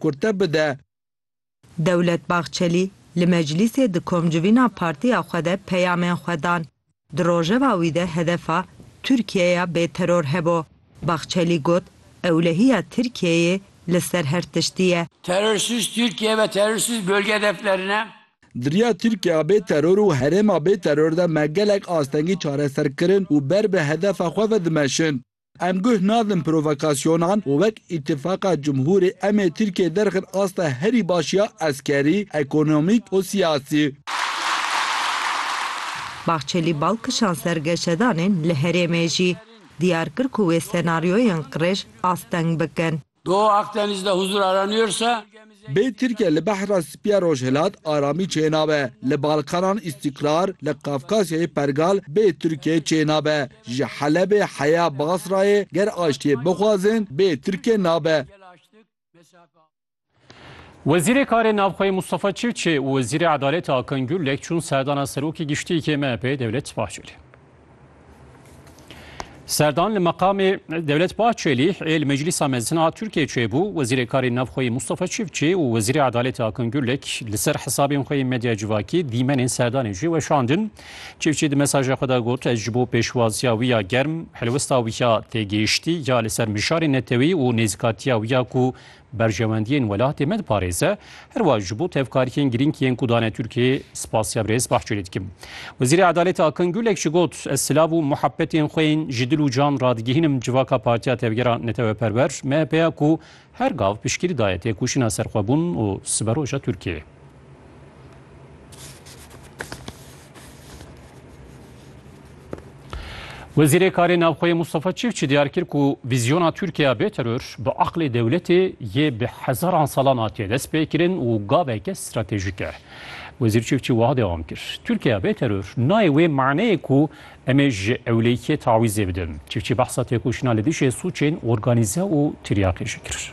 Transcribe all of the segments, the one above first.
kurte bide. Dewlet Bahçelî li meclîsê di komcivîna partiya xwe de peyamên xwe dan. Di rojeva wî de hedefa Tirkiyeya bêteror hebû. Bahçelî got, Ewlehiya Tirkiyeyê li ser her tiştî ye. Terorsiz Tirkiye ve terorsiz bölge hedeflerine. Di riya Tirkiyeya bêteror û herêma bêteror de me gelek astengî çareser kirin û ber bi hedefa xwe ve dimeşin. Em guh nadin provokasyonan û wek Îtîfaqa Cumhûrê em ê Tirkiyeyê derxin asta herî baş ya eskerî, ekonomîk û siyasî. Bahçelî bal kişand ser geşedanên li herêmê jî, diyar kir ku wê senaryoyên qirêj asteng bikin. Doğu Akdeniz'de huzur aranıyorsa, Bê Tirkiye li Behra Spî ya Rojhilat aramî çênabe, li Balkanan îstîkrar, li Kafkasyayê pergal bê Tirkiyeyê çênabe, ji Helebê heya Basrayê ger aştiyê bixwazin bê Tirkiye nabe. Wezîrê Karê Navxweyê Mustafa Çilçê û Wezîrê Edaletê Akın Gürlek çûn serdana Serokê Giştî yê MHP'ê Devlet Bahçelî. Serdan li meqamê Dewlet Bahçelî ê li Meclîsa Mezin a Tirkiyeyê çêbû, Wezîrê Karên Navxweyî Mustafa Çiftçî û Wezîrê Edalêtê Akın Gürlek li ser hesabên xwe yên medya civakî dîmenên Serdanê jî weşandin. Çiftçî di mesajê xwe de got, Ez ji bo pêşwaziya wî ya germ, helwesta wî ya têgihiştî ya li ser mijarên netewî û nêzîkatiya wî ya ku berjewendiyên welatê me diparêze, her wiha ji bo tevkariyên girîng yên ku dane Tirkiyeyê spasiya birêz Bahçelî dikim. Wezîrê Edaletê Akın Gürlek jî got, Ez silav û muhebetên xwe yên ji dil û can re digihînim civaka Partiya Tevgera Neteweperwer, MHP'ya ku her gav piştgirî daye têkoşîna serxwebûn û siberoja Tirkiyeyê. Wezîrê Karê Navxweyê Mustafa Çiftçi diyar kir ku vîzyona Tirkiye bê teror bi aqlê dewletê yê bi hezaran salan hatiye destpêkirin û gaveke stratejîk e. Wezîr Çiftçi wiha dewam kir, Tirkiye bê teror nayê wê maneyê ku em ê ji ewlêkiyê tawîzê bidin. Çiftçi behsa têkoşîna li dijî sûcên organîze û tiryaqê jî kir.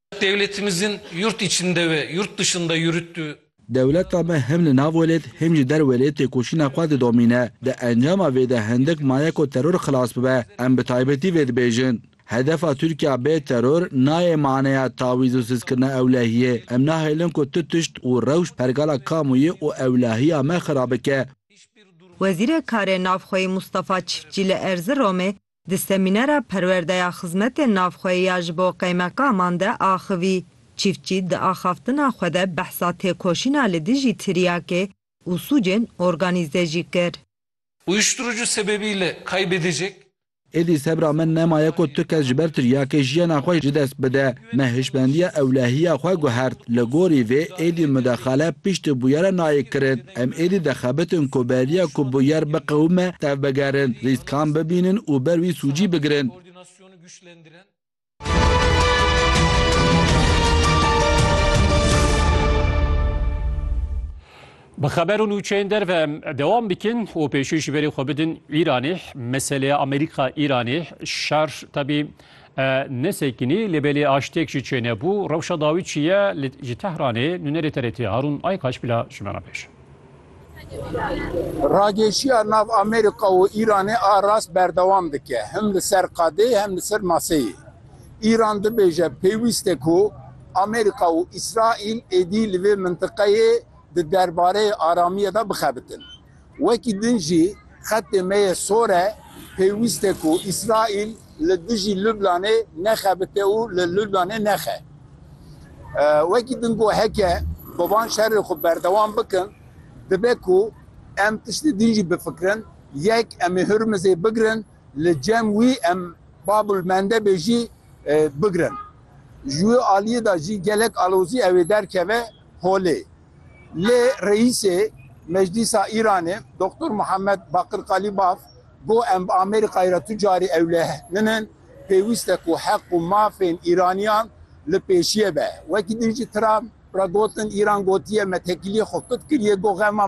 Dewletimizin yurt içinde ve yurt dışında yürüttüğü. Dewleta me hem li nav welêt hem jî der welêt têkoşîna xwe didomîne. Di encama vê de hindik maye ku teror xilas bibe. Em bi taybetî vê dibêjin. Hedefa Tirkiya bê teror nayê maneya tawîz û sizkirina ewlehiyê. Em nahêlin ku tu tişt û rewş pergala kamuyi û ewlahiya me xira bike. Wezîrê Karê Navxweyî Mustafa Çiftçî li Erziromê Di semînera Perwerdeya Xizmetên Navxweyî ya ji bo qeymeqaman de axivî, çîftçî di axaftina xwe de behsa têkoşîna li dijî tiryakê û sûcên organîze jî kir. Uyuşturucu sebebiyle kaybedecek. Êdî sebra min nemaye ku tu kes ji ber tiryakê jiyana xwe ji dest bide. Me hişmendiya ewlehiya xwe guhert. Li gorî vê êdî mudexale piştî bûyera nayê kirin. Em êdî dixebitin ku beriya ku bûyer biqewime tevbigerin, rîskan bibînin û ber wî sûcî bigirin. Bi xeber û nûçeyên derve em dewam bikin û pêşî ji berê xwe bidin Îranê. Meseleya Amerîka-Îranê şer tevî E nesekinî lê belê aştêk jî çênebû. Rewşa dawî çi ye li ji Tehranê nûnerê TRT'ê Harûn Aykaç bila ji me re bêje. Rageşiya nav Amerîka û Îranê a rast berdewam dike him li ser qadê hem li ser maseyê. Îran dibêje pêwîst e ku Amerîka û Îsraîl êdî li vê mintiqeyê di derbareyê aramiyê de bixebitin. Wekî din jî xetê me yê sor e, pêwîst e ku Îsraîl li dijî Lublanê nexebite û li Lublanê nexe. Wekî din got heke bi van şerê xwe berdewam bikin, dibe ku em tiştê din jî bifikirin, yek em ê Hurmizê bigirin, li cem wî em Bab el Mendebê jî bigirin. Ji wê aliyê de jî gelek alozî ew ê derkeve holê. Lê Reîsê Meclîsa Îranê Doktor Muhammed Bakir Qalîbaf got em bi Amerîkayê re tu carî ewleh ninin, pêwîst e ku heq û mafên Îraniyan li pêşiyê be. Wekî din jî Trump re gotin Îran gotiye me tekîliyê xwe kut kiriye got xema